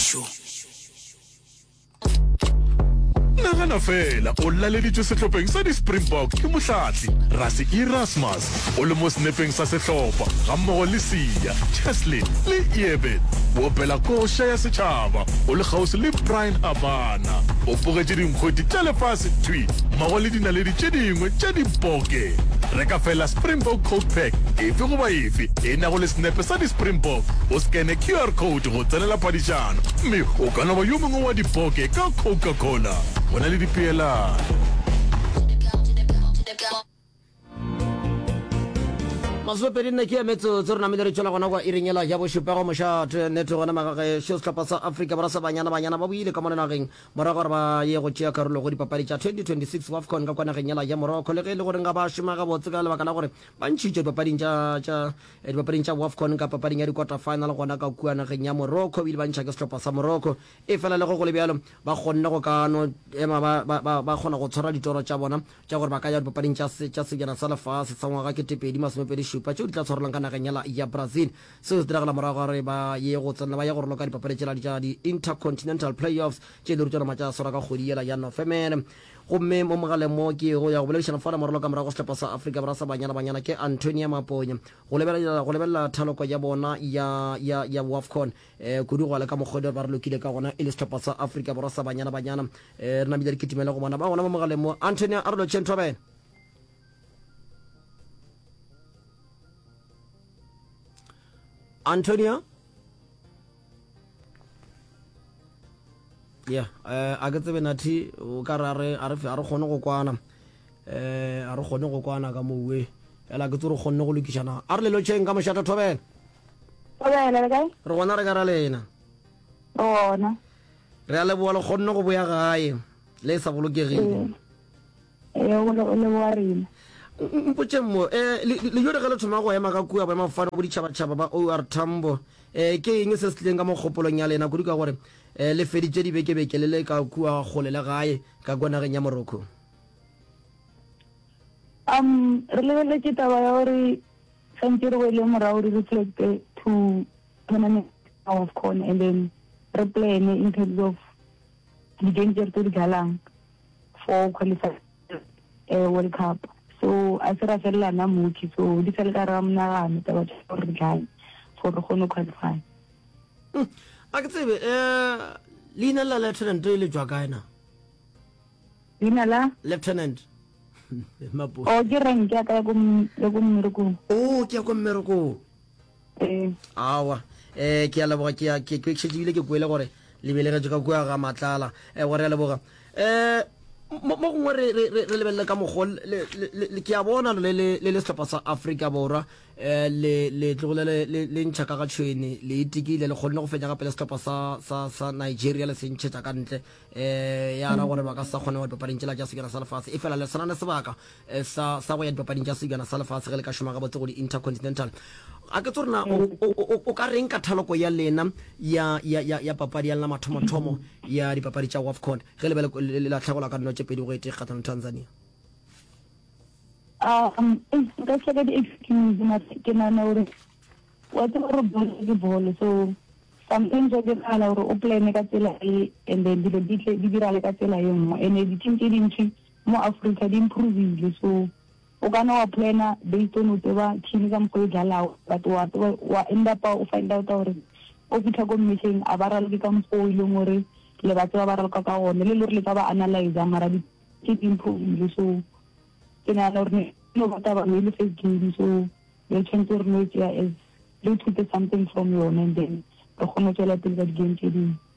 Mešo. Nagana fela o laleditšwe sehlopeng sa di-Springbok ke mohlatli Rassie Erasmus. O le mo senepeng sa sehlopha gammogo le Siya, Cheslin le Iebert. O opela koša ya setšhaba, o le kgauswi le Brian Habana. O bogetše dinkgweti tša lefase thwi mmogo le dinaledi tše dingwe tša diboke. Reka fela Springbok Coke Pack efe goba efe e nago le senepe sa di-Springbok o scanne QR code. le go tsenela padišano, gomme o ka no ba yo mongwe wa dipoke ka Coca-Cola. Go na le dipeelano. Masomepedi nne ke ya metsotso re namile re tšwela gona kwa iring ela ya bošupa go mošate nete gona magagešo sehlopha sa afrika borwa sa banyana banyana ba boile ka mo lenageng morago gore ba ye go tšea karolo go dipapadi tša 2026 wafcon ka kwa nageng ela ya morocco le ge e le goreng ga ba šoma gabotse ka lebaka la gore ba ntšhitšwe dipapading tša Dipapading tša Wafcon ka papading ya di-quarter final gona ka kua nageng ya Morocco, o ile ba ntšha ke sehlopha sa Morocco. Efela le ge go le bjalo, ba kgonne go ka no ema ba, ba, ba, ba kgona go tshwara ditoro tša bona tša gore ba ka ya dipapading tša, tša Sebjana sa Lefase sa ngwaga ke tepedi masomepedi šupa tšeo di tla tshwarelwang ka nageng ya, ya Brazil. Seo se diragala morago ga gore ba ye go tsenela, ba ye go roloka dipapadi tšela tša di-Intercontinental Playoffs tše e le rutšwana matša a swara ka kgwedi yela ya Nofemere. Gomme mo mogaleng mo ke yego ya go boledišana fa lamoralo ka morago sehlopa sa Afrika Borwa sa Banyana Banyana ke Antonia Maponya go lebelela, go lebelela thaloko ya bona ya, ya, ya Wafcon. E, kudu go le ka mokgwa o ba re lokile ka gona e le sehlopa sa Afrika Borwa sa Banyana Banyana. E, re namile re kitimele go bona ba gona mo mogaleng mo. Antonia, a re lotšheng thobela. Antonia? ya eh, a ke tsebe nathi o ka ra re a re kgone go kwana eh a re kgone go kwana ka mowe ela ke tse re kgonne go lokišana a re lelo tšheng ka mošata thobela re gona re ka ra lena re a leboa le kgonne go boya gae le e sa bolokegile Ee, o le, o le wa rena. Mpotšeng mo, eh, le jore ge le thoma go ema ka kua boemafofane go ditšhabatšhaba ba OR Tambo, eh, ke eng se se tlileng ka mo kgopolong ya lena, kudu ka gore eh, le feditše dibekebeke le le ka kua kgole le gae, ka kua nageng ya Morocco? Um, re lebeletše taba ya gore swantše re boele morago re reflecte to tournament of con and then re plane in terms of di-game tse re tse di dlalang for go qualify eh World Cup so a se ra felela na mooki so di sa le ka ra monagano taba tsa gore re tlang for re gone qualify hmm. a ke tsebe eh leina la lieutenant le jwa kae na leina la lieutenant o oh, ke rank ya ka ya ko mmerekong o oh, ke ya ko mmerekong Ee. Awa. Eh, ke a leboga ke a ke ke šetše bile ke kwele gore le belegetše ka kua ga matlala. Eh, gore a leboga. Eh, mo mo gongwe re re re lebelele ka mokgo le le ke a bona le le le le sehlopha sa Afrika Borwa eh le le tlogile le le le ntšha ka ga tšhweni le itikile le kgonne go fenya gape le sehlopha sa sa sa Nigeria le se ntšhetša ka ntle eh ya ra gore ba ka sa kgone go papading tšela tša sekela sa lefatshe e fela le sana le sebaka sa, sa go ya dipapading tša sebjana sa lefase ge le ka šoma gabotse go di-intercontinental. A ke tso re na o, o, o, o ka reng ka thaloko ya lena ya, ya, ya, ya papadi ya lena mathomothomo ya dipapadi tša WAFCON ge le be le, le lahlegelwa ka dino tše pedi go e tee kgatlhanong Tanzania? Um, eish, nka tšhaka di-excuse mara ke nana gore wa tseba gore bolo ke bolo so sometimes wa diragala gore o plane ka tsela e and then dilo di tle di diragale ka tsela e nngwe and-e di-team tše dintši Mo Africa di improvile so o ka na wa plana based on o tseba team ka mokgwa e dlalago but wa tseba wa end up o find out gore o fitlha ko mmetleng a ba raloke ka mokgwa o e leng gore le ba tseba ba raloka ka gone le le gore le ka ba analyza mara di ke di improvile so ke nagana gore ne no ba taba e le first game so re tshwanetse gore no e tsea as re ithute something from yone and then re kgone go tswela pele ka di-game tse dingwe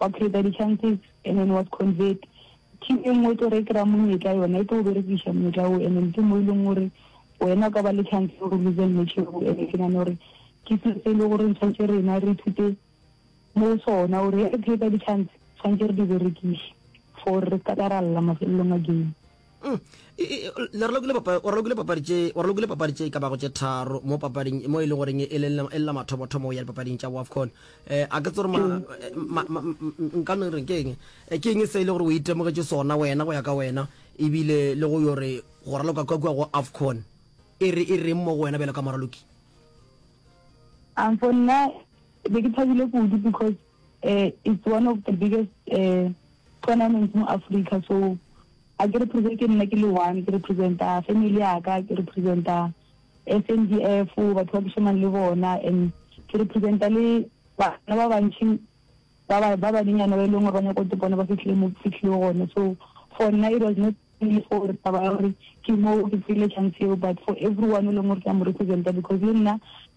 Wa creator di chances and then was convert. Team e nngwe e tlo re e kry-a monyetla yona e tlo o berekiša monyetla oo and then ke mo e leng gore wena o ka ba le chance gore o lose match eo and ke nane gore ke selo se e le gore tshwanetse rena re ithute mo sona gore re creator di chance tshwanetse re di berekiše for re ka ka ra lla mafelelong a game. Mm. I, i, le re lokile papa- o re lokile papadi tše o re lokile papadi tše e ka bago tše tharo mo papading mo e le goreng e le e lela mathomothomo ya dipapading tša wafcon eh a ke tsore ma, eh, ma, ma, m- m- nka no reng ke eng Eh, ke eng se e le gore o itemogetše sona wena go ya ka wena ebile le go yo re go raloka ka kua go afcon e re e reng mo go wena bjalo ka moraloki um for nna be ke thabile kudu because uh, it's one of the biggest uh, Gona mo mo Africa so a ke represent ke nna ke le one ke representa family ya ka ke representa SANDF batho ba ke shomang le bona and ke representa le bana ba bantšhi ba ba ba banenyana ba e leng gore ba nyako topone ba fitlhile mo ke fitlhile gone so for nna it was not only for taba ya gore ke mo ke tsile chance eo but for everyone o leng gore ke a mo representa because le nna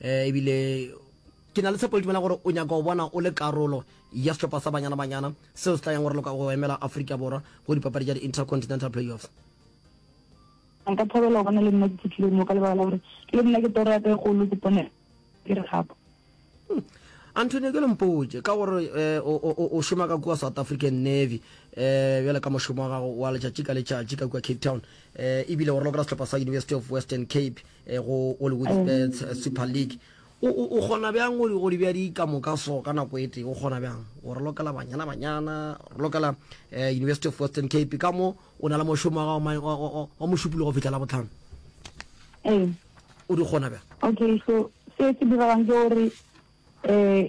um ebile ke na le tshepo le tumela gore o nyaka go bona o le karolo ya sehlopha sa banyana banyana seo se tla yang gore loka go emela aforika borwa go dipapadi tša di-intercontinental playoffs nka thabela go bona le nna ke fitlhile mo ka lebaka la gore le nna ke toro ya ka e golo ke pone ke re gapo antonio ke lempotse ka gore eh, o šoma ka kua south african navy um bjale ka mošomo wa gago wa letšatši ka letšatši ka kua cape town um ebile o raloka sehlopha sa university of western cape eh, go hollywood eh, super league o kgona bjang o di bja di ka moka so ka nako e tee o kgona bjang o re lokela banyana banyana re lokela eh, university of western cape ka mo o na le mošomo wa mošupolo go fitlhela botlhano ee. o di kgona bjang okay so se se diralang ke gore um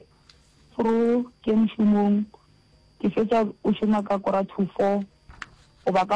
through ke mošomong ke fetsa o šoma ka kora two four goba ka